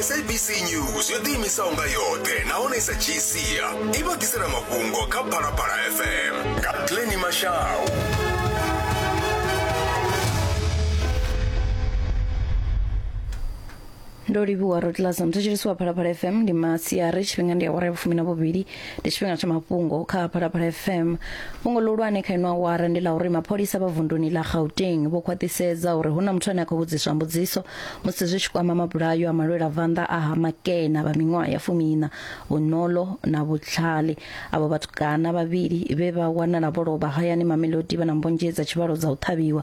sabc news yo ḓiimisaho nga yoṱhe nahone i sa dzhii sia i vha ḓisela mafhungo kha phalaphala fm nga pleni mashau ndo livhuwa rotlas muthetshelesi wa phalaphala fm ndi masiari tshifhinga ndi awara ya vhufumi na vhuvhili ndi tshifhinga tsha mafhungo kha phalaphala fm fhungo ḽihulwane kha inwa wara ndi ḽa uri mapholisa vha vunduni ḽa gauteng vho khwaṱhisedza uri hu na muthu ane a khou vhudziswa mbudziso musi zwi tshi kwama mabulayo a malwela vanḓa a ha makena vha miṅwaha ya fumiina vhuṋolo na vhutlhali avho vhatukana vhavhili vhe vha wanala vho lovha hayani mamelodi vha na mbonzhe dza tshivhalo dza u ṱhavhiwa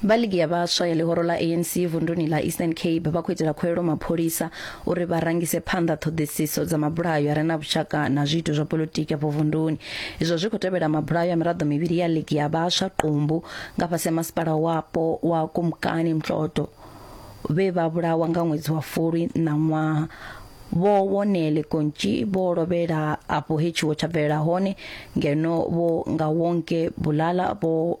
Vha ligi ya vhaswa ya ḽihoro ḽa ANC vunduni ḽa Eastern Cape vha khou itela khuwelelo mapholisa uri vha rangise phanḓa ṱhoḓisiso dza mabulayo a re na vhushaka na zwiito zwa politiki afho vunduni. Izwo zwi khou tevhela mabulayo a miraḓo mivhili ya ligi ya vhaswa Qumbu nga fhasi ha masipala wapo wa Kumkani Mtloto vhe vha vhulawa nga ṅwedzi wa Fulwi ṋaṅwaha. Vho Wonele Kontji vho lovhela afho he tshiwo tsha bvelela hone ngeno vho Ngawonke Bulala vho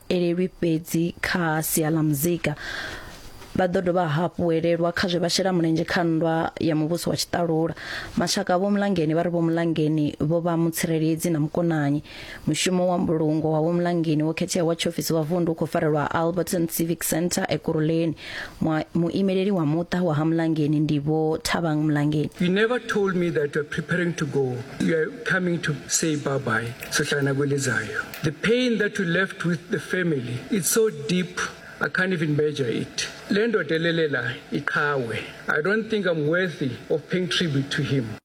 elelwi fhedzi kha sia ḽa muzika vha ḓo dovha hafhu elelwa kha zwe vha shela mulenzhe kha nndwa ya muvhuso wa tshiṱalula mashaka vho mulangeni vha ri vho mulangeni vho vha mutsireledzi na mukonanyi mushumo wa mbulungo wa vho mulangeni wo khetheaho wa tshiofisi wa vundu u khou farelwa alberton civic center ekuruleni muimeleli wa muṱa wa ha mulangeni ndi vho thabang mulangeni you never told me that you're preparing to go you're coming to say bye bye sohlangana kwelizayo The pain that we left with the family, it's so deep. I can't even measure it. Lendo delelela ikawe. I don't think I'm worthy of paying tribute to him.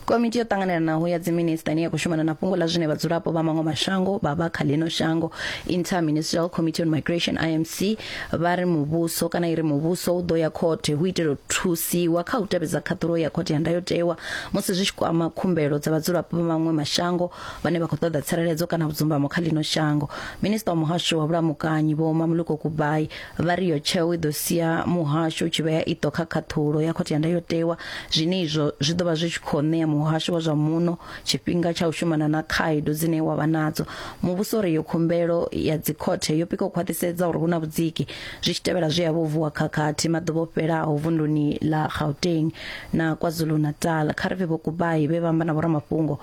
komiti yo ṱanganelanaho ya dziminista ine ya khou shumana na fhungo ḽa zwine vhadzulapo vha maṅwe mashango vha vha kha ḽino shango interministerial committee on migration imc vha ri muvhuso kana i ri muvhuso u ḓo ya khothe hu itela u thusiwa kha u tevhedza khaṱhulo ya khothe ya ndayotewa musi zwi tshi kwama khumbelo dza vhadzulapo vha maṅwe mashango vhane vha khou ṱoḓa tsireledzo kana vhudzumbamo kha ḽino shango minista wa muhasho wa vhulamukanyi vho mamuluko kubai vha ri yo tsheo i ḓo sia muhasho u tshi vhea iṱo kha khaṱhulo ya khothe ya ndayotewa zwine izwo zwi ḓo vha zwi tshi khou ṋea muhasho wa zwa muno tshifhinga tsha u shumana na khaedu dzine wa vha nadzo muvhuso ri yo khumbelo ya dzikhothe yo pika u khwaṱhisedza uri hu na vhudziki zwi tshi tevhela zwe ya vho vuwa khakhathi maḓuvha o fhelaho vunduni ḽa gauteng na kwazulu-natal kha ri vhe vho kubai vhe vha amba na vhoramafhungo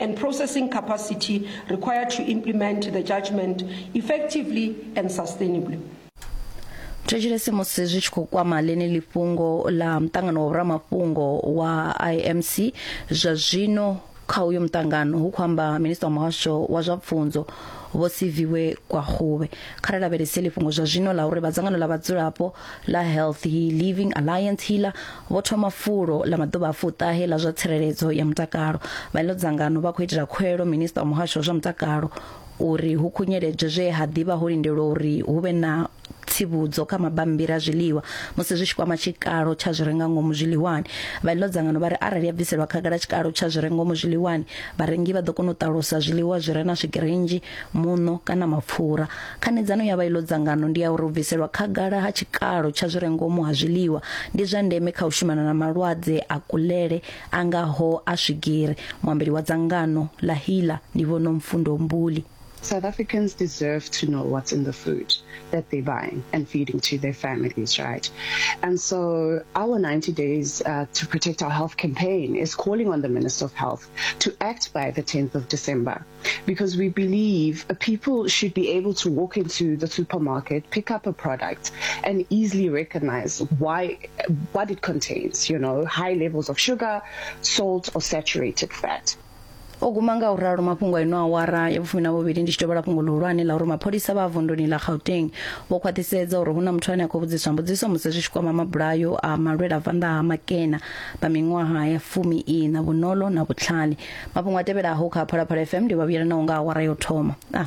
and processing capacity required to implement the judgment effectively and sustainably. thetshelese musi zwi tshi khou kwama ḽeneli fhungo ḽa muṱangano wa vhuramafhungo wa imc zwa zwino kha uyo muṱangano hu khou amba minista wa muhasho wa zwa pfunzo vho siviwe kwahuvhe kha ri lavhelese ḽifhungo zwa zwino ḽa uri vha dzangano ḽa vhadzulapo ḽa health living alliance healer vho thoma fulo ḽa maḓuvha a fuṱahe ḽa zwa tsireledzo ya mutakalo vha ḽo dzangano vha khou itela khuelo minista wa muhasho wa zwa mutakalo uri hu khunyeledzwe zwe ha ḓivha ho lindelwa uri hu vhe na tsivhudzo kha mabammbiri a zwiḽiwa musi zwi tshi kwama tshikalo tsha zwi renga ngomu zwiḽiwani vha ḽo dzangano vha ri arali ya bviselwa khagala tshikalo tsha zwi renga ngomu zwiḽiwani vharengi vha ḓo kona u ṱalusa zwiḽiwa zwi re na swigiri nnzhi muṋo kana mapfura. Khanedzano ya vha iḽo dzangano ndi ya uri u bviselwa khagala ha tshikalo tsha zwi re ngomu ha zwiḽiwa ndi zwa ndeme kha u shumana na malwadze a kulele a ngaho a swigiri. Muambeli wa dzangano ḽa HEALA ndi Vho Nomfundo Mbuli. South Africans deserve to know what's in the food that they're buying and feeding to their families, right? And so our 90 days uh, to protect our health campaign is calling on the Minister of Health to act by the 10th of December. because we believe people should be able to walk into the supermarket, pick up a product, and easily recognize why what it contains. You know, high levels of sugar, salt, or saturated fat. o guma nga u ralo mafhungo eno awara ya vhufumi na vhuvhili ndi tshi dovhola fhungo ḽihulwane ḽa uri mapholisa vha vunduni ḽa gauteng vho khwaṱhisedza uri hu na muthu ane a khou vhudziswa mbudziso musi zwi tshi kwama mabulayo a malwela vanḓa ha makena vha miṅwaha ya fumi ina vhunolo na vhutlhali mafhungo a tevhelaho kha phalaphala fm ndi vha vhuyelanaho nga awara yo thoma ah.